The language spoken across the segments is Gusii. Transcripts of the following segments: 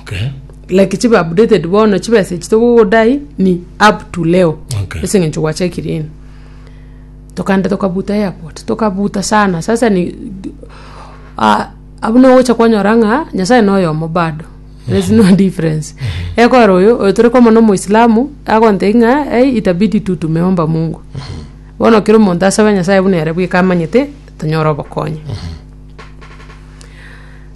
Okay. like chibe updated bono chibesa echi togogodai ni up to leo Okay. ase eng'encho gwachakire ino tokaenda tokabuta airport tokabuta sana sasa ni ah, abwo nogocha kwanyora ng'a nyasaye noyomo bado there's no difference ekora oyo oyo tore komona omoislamu agontei ng'a ei itabidi tu tumeomba mungu bono kera omonto asabe nyasaye buna ere bweka amanyete tonyore obokonyi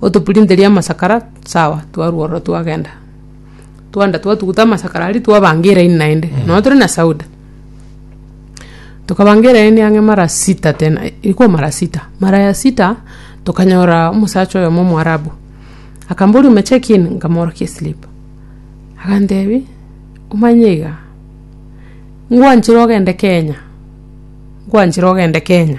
Otopurinterie amasakara, sawa, twarua ororo twagenda. Twagenda twatuguta amasakara aria twabanga eraini naende, nonya tore na sauda. Tokabanga eraini ang'e mara sita tena, rikwa mara sita. Mara ya sita, tokanyora omosacha oyomo omoarabu, akamboria omecheki in? Nkamorokia eslip. Agantebi, omanye iga, ngwanchire ogende Kenya, ngwanchire ogende Kenya.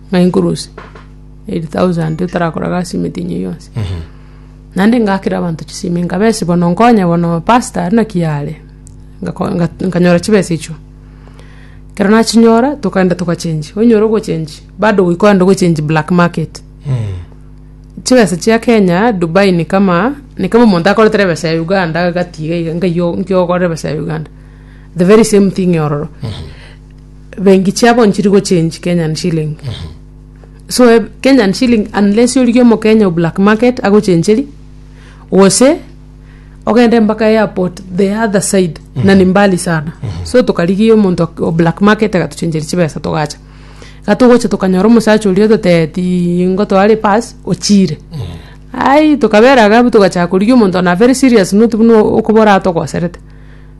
ng'a inkurusie eight thousand otarakoraga ase emete enyia yonsi. Naende ngakera abanto chisimi nkabesi bono nkonye bono pastor aria naki are, ngako- nga- nkanyora chibesa echio. Ekero nachinyora, tokaenda togachengi, onyora ogochengi, bado goika ogenda ogochengi black market. Chibesa chia kenya, dubai ni kama ni kama omonto akoretere ebesa ya uganda agatiga iga, nkayio nkiogorera ebesa ya uganda, the very same thing ororo. bengi chiabo nchiri gochange kenyan shilling so eh, kenyan shilling unless origie omokenya o black market agochencheri gose ogende mpaka airport the other side na ni mbali sana so tokarigia omonto ak- o black market agatochencheri chibesa togacha iga togocha tokanyora omosacha oria ototebeti nigo tware pass ochire ai tokabera iga abwo togachaka korigia omonto na very serious not buna okobora atogoserete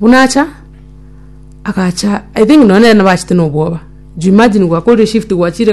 Buna acha, agacha, I think nonye nere nabachete nobwoba, juu imagine gwakorire shift gwachire.